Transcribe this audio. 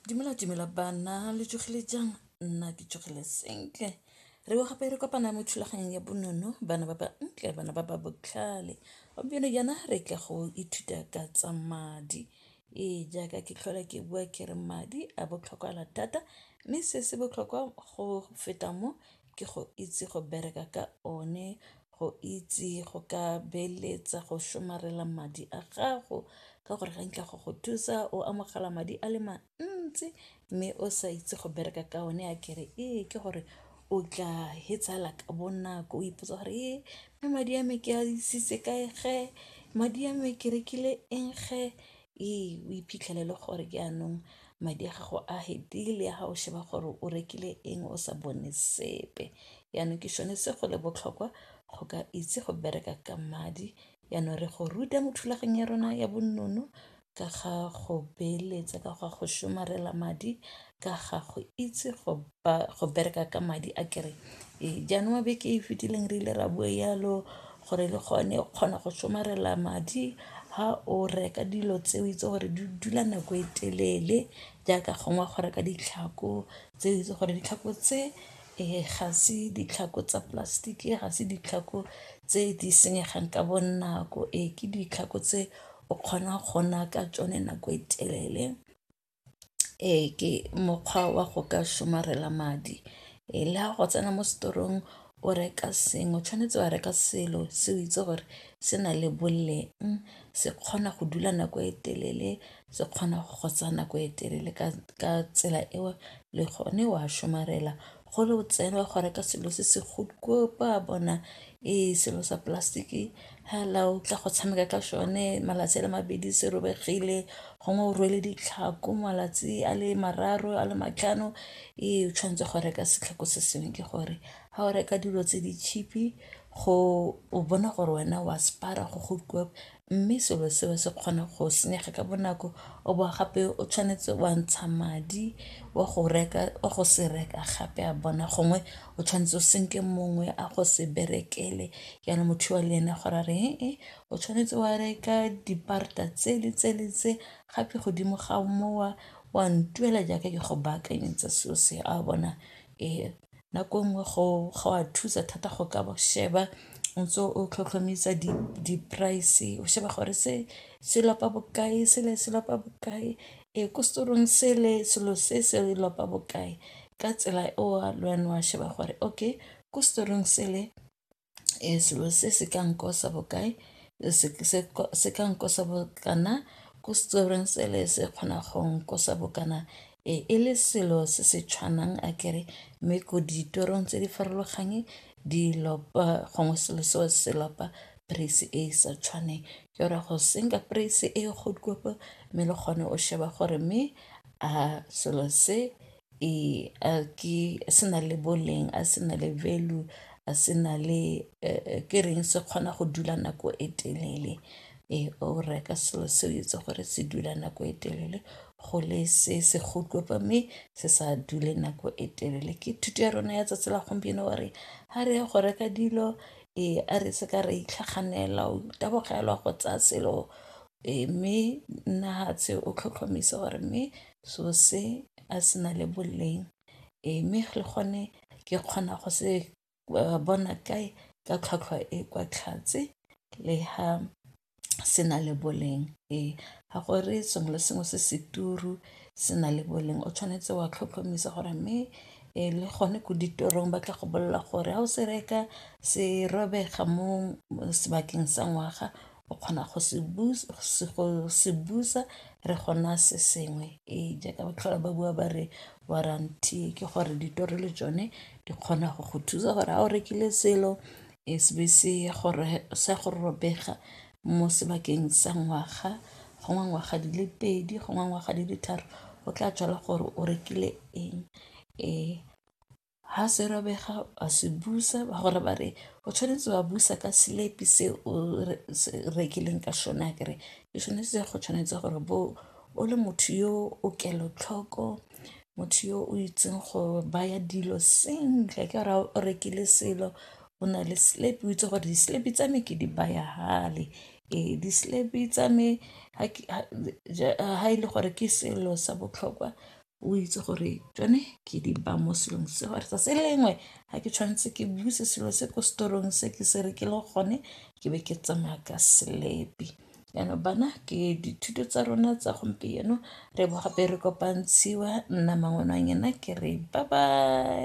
Dumela dumela bana lo tsogile jang nna ke tsogile sentle re bo gape re kopana mo thulaganyong ya bonno bana ba ba ntle bana ba ba botlhale gompieno jaana re tla go ithuta ka tsa madi ee jaaka ke tlhola ke bua ke re madi a botlhokwa thata mme se se botlhokwa go feta mo ke go itse go bereka ka one go itse go ka beeletsa go somarela madi a gago ka gore ga nkitla go go thusa o amogela madi a le mantsi mme o sa itse go bereka ka one a kere ee ke gore o tla fetsa ka bonako o ipotsa gore ee mme madi a me ke a isitse kae ge madi a me ke rekile eng ge Ee, o iphitlhele e le gore ke jaanong madi a gago a fedile ga o sheba gore o rekile eng o sa bone sepe, jaanong ke sone se go le botlhokwa go ka itse go bereka ka madi. Jaanong re go ruta mo thulaganyong ya rona ya bonnono ka ga go beeletsa, ka ga go somarela madi, ka ga go itse go ba go bereka ka madi a kere ee jaanong beke e fitileng re ile ra bua yalo gore le gone o kgona go somarela madi ha o reka dilo tse o itse gore di dula nako e telele jaaka gongwe go reka ditlhako tse o itse gore ditlhako tse ee ga se ditlhako tsa plastic ga se ditlhako tse di senyegang ka bonako ee ke ditlhako tse o kgonang go nna ka tsone nako e telele. Ee ke mokgwa wa go ka somarela madi, le ha go tsena mo setorong o reka sengwe tshwanetse wa reka selo se o itse gore se na le boleng se kgona go dula nako e telele se kgona go go tsaya nako e telele ka tsela eo le gone wa somarela. gole o tsena go reka selo se se ba bona ee selo sa plastic hala o tla go tshameka ka sone malatsi a le mabedi se robegile gongwe o rwele ditlhako malatsi a le mararo a le matlhano ee o tshwanetse go reka setlhako se sengwe ke gore ga o reka dilo tse di cheap-i go o bona gore wena wa sparer go . mme selo seo se kgona go senyega ka bonako o bo gape o tshwanetse wa ntsha madi wa go reka wa go se reka gape a bona gongwe o tshwanetse o senke mongwe a go se berekele jaanong motho wa le ene gore a re e o tshwanetse wa reka diparata tse le tse le tse gape godimo ga mowa wa ntuela jaaka ke go baakanyetsa selo se a bona e nako nngwe go go a thusa thata go ka sheba o ntse o tlhotlhomisa di-price o sheba gore se se lapa bokae sele se lapa bokae ee ko store-ong sele selo se se lapa bokae ka tsela eo le wena wa sheba gore okay ko store-ong sele ee selo se se ka nkosa bokae se ka nkosa bokana ko setorong sele se kgona go nkosa bokana ee e le selo se se tshwanang a kere mme ko ditorong tse di farologane di lopa gongwe selo se wa se lopa price e sa tshwaneng ke gore go senka price e go mme le gone o sheba gore mme a selo se Ee, a ke se na le boleng a se na le value a se na le ke reng se kgona go dula nako e telele ee o reka selo se o itse gore se dula nako e telele go le se se mme se sa dule nako e telele. Ke thuto ya rona ya tsatsi la gompieno wa re ga re ya go reka dilo ee a re se ka ra itlhaganela o tabogelwa go tsaya selo Ee, mme Nahatse o tlhotlhomisa gore mme so se a se na le boleng ee mme le gone ke kgona go se bona kae ka tlhwatlhwa e kwa tlhatse le ha se na le boleng ee ga go re sengwe le sengwe se se turu se na le boleng o tshwanetse wa tlhotlhomisa gore mme ee le gone ko ditorong ba tla go bolelela gore ga o se reka se robega mo sebakeng sa ngwaga o kgona go se busa re kgona se sengwe ee jaaka ba tlhola ba bua ba re warranty ke gore ditori le tsone di kgona go go thusa gore ga o rekile selo e se be se ya gore sa go robega mo sebakeng sa ngwaga gongwe ngwaga di le pedi gongwe ngwaga di le tharo o tla tswala gore o rekile eng ee. Ha se robega wa se busa ba gore ba re o tshwanetse wa busa ka selepi se o se rekileng ka sone akere e tshwanetse go tshwanetse gore bo o le motho yo o kelotlhoko motho yo o itseng go baya dilo sentle ka ra o rekile selo o na le selepi o itse gore diselebi tsa me ke di baya fale ee diselebi tsa me ha e le gore ke selo sa botlhokwa o itse gore tsone ke di ba mo selong se gore tsatsi le lengwe ga ke tshwanetse ke buse selo se ko setorong se ke se re ke le gone ke be ke tsamaya ka selepi jaanong bana ke dithuto tsa rona tsa gompieno re bo gape re kopantshiwa nna mangwenanyena ke re ba ba